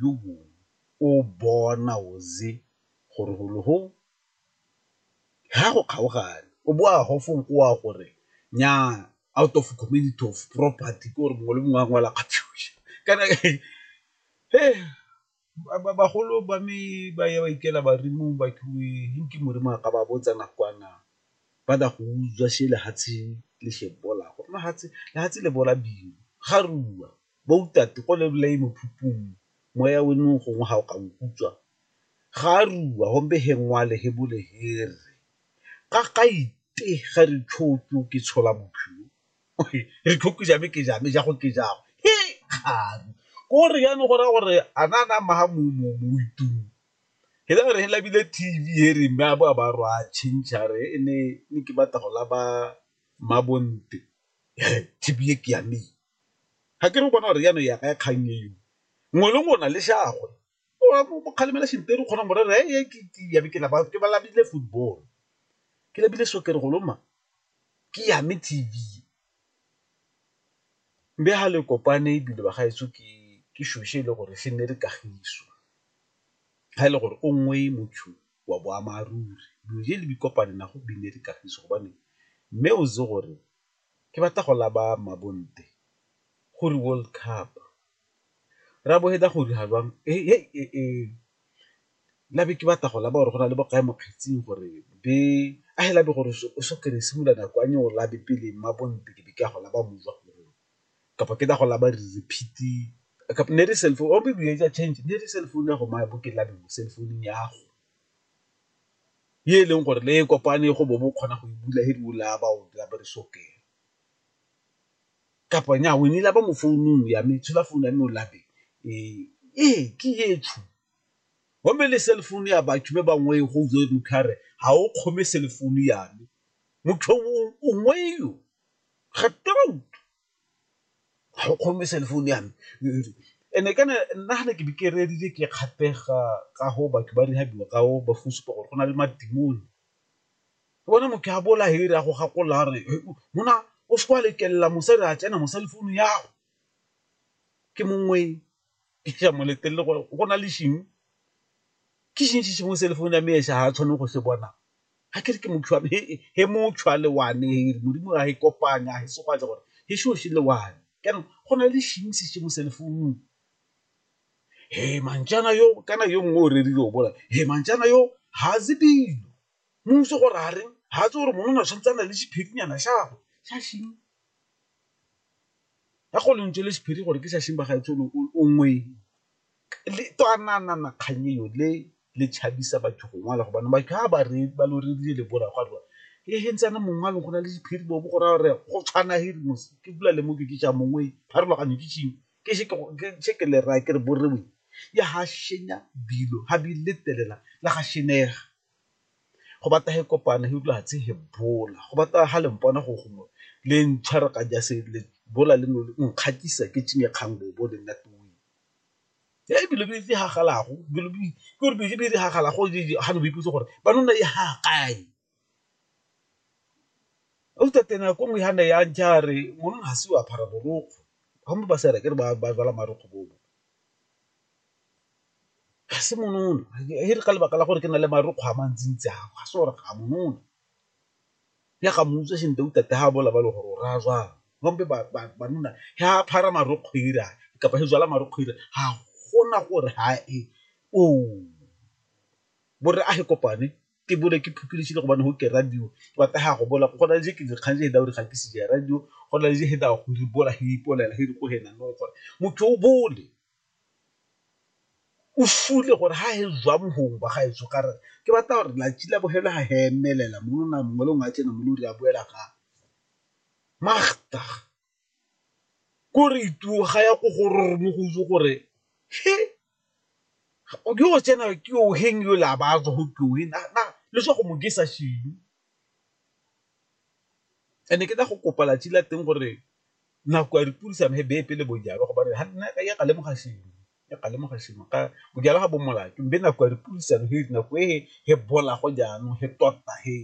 yo mongwe o bona o ze gore golo go ha go kgaogane o bo a gofong o a gore nyaa out of community of property ke gore mongwe le mongwe a ngwala kana bagolo ba me ba ya ba ikela badimong ba ke modimo a ka ba botsa nakwana ba tla go utswa shela fatshe le shebo la go nna fatshe le fatshe le bola bima ga rua. Boutate go le bolai mo phupung, moya we nung gongwe ha o ka nkutswa. Ga a rua hombe he ngwale he bole he re, Ga ga ite ga re tshokyo ke tshola bophilo. Re tshokyo jame ke jame, jago ke jago. He kgari! Ko re yano go raya gore a na na mma ha mo mo mo itung. He la re he labile TV he re mme a bo a ba rwa a change a re e ne ne ke batla go laba Mmabonte. He TV e ke ya me e. ga ke re bona re yana ya ka kgang eo ngwe le ngwe o na le shagwe o kgalemela Shintero kgona mo rera e ke ya ke laba ke balabile football ke lebile soccer go loma ke ya me T_V mme ha le kopane ebile ba gaetsho ke ke shoshe e le gore se nne re kagiso ga e le gore o nngwe motho wa boammaaruri dilo je le di kopane nago bine re kagiso gobane mme o itse gore ke batla go laba Mabonte go re World Cup, rabo he da go dira jwang labe ke batla go laba gore go na le bo kae mo kgetsing gore be a he labe gore o so kry-e simolola nako a nyeola be pele Mabonte ke be ke a go laba kapa ke da go laba re repeat-e kapa ne e le cellphone or maybe e a change ne e le cellphone ya go maya bo ke labe cellphone ya go. ye e leng gore le e kopane go bo bo kgona go e bula he di la ba o la ba re soke kapa nya o ne la ba mo founung ya me tshela founu ya me o labe e e ke ye tshu go me le cell phone ya ba tshube ba ngwe go zo mo khare ha o kgome cell phone ya me motho o ngwe yo ga toro ga o kgome cell phone ya me and-e kana nna ga ne ke be ke rerile ke kgatlhega ka go batho ba rehabiwa ka o ba go supa gore go na le madimoni, ke bona motho a bola here a go gakolola a re monna o seke wa letlelela mosadi a tsena mo cell phone ya go, ke mongwe. ke a mo letelele gore go na le šeng, ke šeng se sengwe se le founu ya me e sa tshwaneng go se bona, ga ke re ke motho wa me he motho wa le one he Modimo ga e kopanye ga e se gwa gore he seo se le one, jaanong go na le šeng se sengwe se le founung, he mantšana yo kana yo mongwe o rerile o bola he mantšana yo ga itse dilo, mmuso gore a reng ga itse gore monna o tshwanetse a nna le sephethinyana sa gagwe sa šeng. ya go lentswe le sephiri gore ke sasheng ba gaetsho lo o ngweng le twanana kgang eo le le tshabisa batho go ngwala gobane ba ka ba re ba lo re dile le bora ga rwa e he ntsana mongwe lo gona le sephiri bo go ra re go tshwana he mo ke bula le mo ke ke ja mongwe ga re loganyo ke tshing ke se ke se ke le ra ke re bo re we ya ha shenya bilo ha bi le telela la ga shenega go batla he kopana he utlwa fatshe he bola go batla ha le mpona go gongwe le ntshwara ka jase le bola le nole nkgatisa ke tšhinye kgang bo bo le nna tuwing. He dilo di diragalago dilo di ke gore dilo tse di diragalago ga le ba ipotsa gore ba nna e ha kae, gauta tena nako nngwe ha ne ya ja re monna ga se o apara borokgwe ba bangwe ba sa re akere ba rwala marokgwe bo bo. ga se monono e re ka lebaka la gore ke na le marukgwe a mantsintsi ao ga se gore ga monono, ya ga mmutswa sentle o tate ga a bola ba le gore o raya jang gompe banna ge a phara marokgwe ira kapa ge jala marokgwe ira ga gona gore ha e oo, bo rre a ge kopane ke bone ke phuthulogile gobane go ke radio ke batla ga go bola go na le je ke dikgang je hela gore ga ke se je radio go na le je hela gore bola he ipolela he re ko go ena gore motho o bole. o fule gore ha e zwa bohong ba gaetsho ka re ke batla gore latsi la bogelo ha he emelela mo lona mongwe le ngwe a tsena mo lori a boela ga magda ko re ituo ga ya ko go rorong mo go itse gore he o ke o tsena ke o heng yo la ba tswa go ke o heng na le swa go mo ke sa shilo and-e ke tla go kopa latsi la teng gore Nako ya dipurisano he bee pele bojalo gobane ga nna ka ya ka lemoga shimo ya ka lemoga shimo ka bojalo ga bo molato mbe nako ya dipurisano he nako e he bola go jaanong he tota he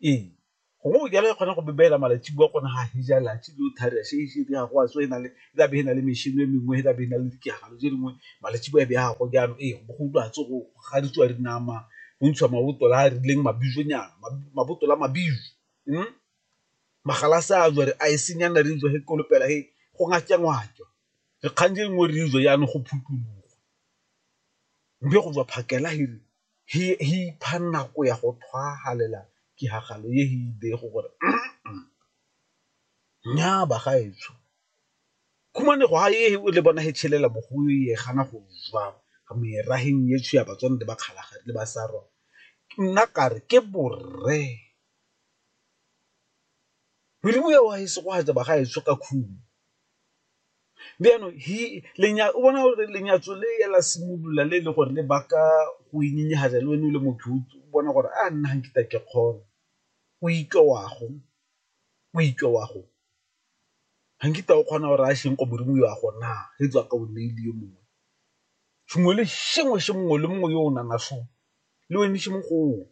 ee gongwe bojalo e kgona go bebeela malatsi bua gone ga he ja latsi lo thari a shee shee ga go a tswa e na le e tla be e na le mešhini e mengwe e tla be e na le dikegalo tse dingwe malatsi bua e be ya go jaanong ee go go utlwa tsogo ga di tswa dinama go ntshiwa mabotola a a rileng mabizonyana mabotola mabizo magalase a jwa re a e senyana re jwa he kolopela he go ngake-ngwake, re kgang je nngwe re jwa jaanong go phuthulogwa, mme go jwa phakela he re he ipha nako ya go tlhwahalela tiragalo ye he e bego gore nnyaa bagaetsho, khumanego ha ye le bona he tshelela mo go ye gana go jwa meraheng yetsho ya Batswana le Bakgalagadi le Basarwa, nna kare ke borre. Modimo yo wa e segogatsa ba ga e tshoka khumo. Mme jaanong o bona gore lenyatso le la simolola le e le gore le baka go inyenyefatsa le wena o le motho o bona gore a nna ga nkitla ke kgona, o itlwa wa go, o itlwa wa go, ga nkitla o kgona gore a sheng ko Modimo yo a go na e tswa ka o nneile yo mongwe. Sengwe le sengwe se mongwe le mongwe yo o nang le wena se mo go o.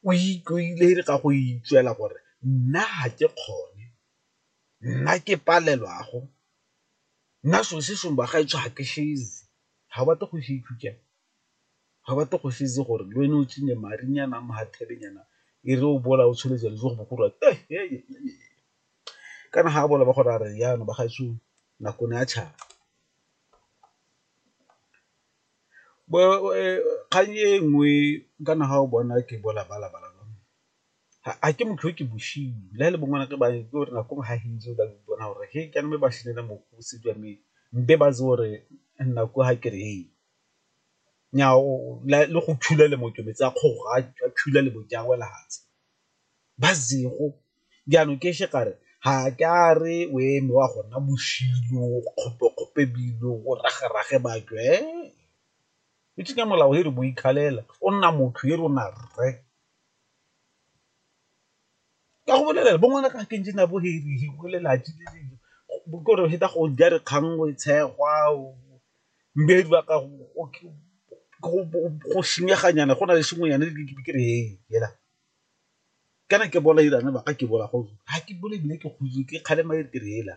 o ikaegile ka go itseela gore nna ga ke kgone, nna ke palelwa go, nna selo se sengwe bagaetsho ga ke se itse, ga o batle go se itse jang, ga o batle go se itse gore le wena o tsene madinyana a mathelenyana e re o bola o tshwere jalo jo bogolo kana ga a bola ba go raya re jaana bagaetsho nako ne ya tšhaba. kgang e nngwe ka na ga o bona ke bo labalaba la bone ga ke motho yo ke bosenyi le ga e le bongwana ke ba ke gore nako nngwe ga o ka ipona gore he jaanong mme ba senela mokgosi jwa me be ba itse gore nna ko ga kere he nyaa le go thula le mo ke metsi a kgoro a thula le mo ke a wela fatshe. ba zero jaanong ke še kare ga ke a re o eme wa gona boshilo kgopekgope bilo o ragerage batho e o tsenya molao e re bo ikgalela o nna motho e re o na rre ka go bolelela bo ngwana ka keng na bo herihe bo lelatsi le dilo bo kore heta go ja re kgang o e tshegwa o mmedi ba ka go senyeganyana go na le sengwenyane ke re hela. kana ke bola irana baka ke bola go ha ke bole bile ke khutsu ke khale ma ke rela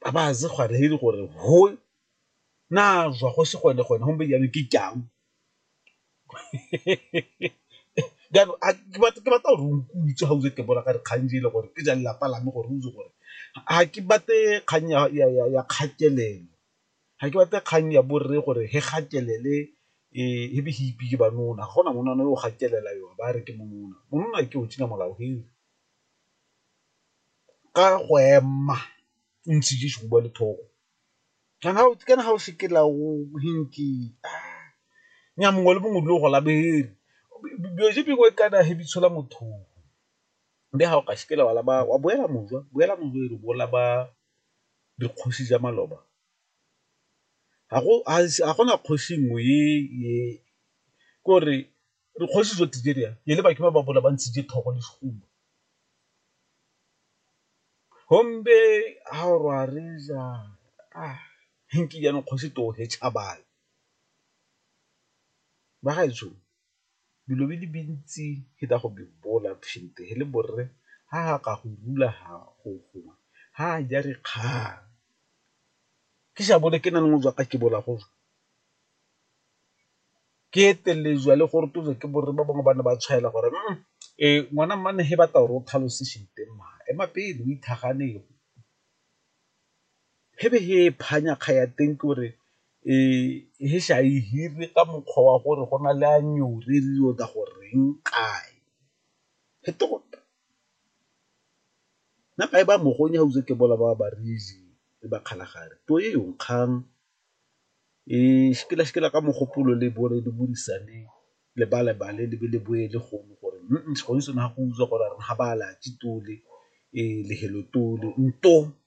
ba ba ze gwa re hiri gore ho na zwa go se gone gone hombe ya ke kyang jalo a ke batla ke batla gore o nkutswe ha o ke bola ka re kganje le gore ke ja lelapa la me gore o itse gore ha ke bate kgang ya ya ya kgatelelo ga ke batle kgang ya borre gore he gatelele he be he ipi ke banona, ga gona monwana yo o gatelela yo a ba a re ke monona, monona ke o tšhina molao he ka go ema o ntse jeso go bua le thogo kana kana ga o seke la o hinki nya mongwe le mongwe o dule o go labere dilo tse dingwe kana he di tshola motho o be ga o ka seke la wa boela mošwa boela mošwa e re bo laba. dikgosi tsa maloba ga go na kgosi nngwe e ke gore dikgosi tsotlhe tse di yang e le batho ba ba bola ba ntshitse thogo le sehuba. Gombe ha o re wa reetsa jaanong kgosi tee o he Chabane, bagaetsho Bilo bi li bintsi hi ta go bi bola phinte hi le borre ha ha ka go rula ha go gongwe ha a ja re kgang ke sa bone ke na le ngojwa ka ke bola go ke etelejwa le gore tsotlhe ke borre ba bangwe ba ne ba tshwaela gore ngwana mmane he batla gore o tlhalose shit-e mma ema pele o . he be he e phanya kga ya teng ke gore he sa e hire ka mokgwa wa gore go na le a re yo tla go reng kae he tota nna ka e ba mogong ha ke bola ba ba le ba kgalagadi puo e yong kgang ka mogopolo le bone le buisane le ba lebale le be le boe le gongwe gore gone sone ha go utlwa gore ga ba tole le hello tole .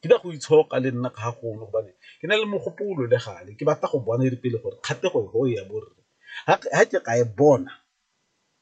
ke nyaka go itshoka le nna ga golo gobane ke na le mogopolo le gale ke batla go bona e re pele gore kgatlhego e ya borre ga ke ka e bona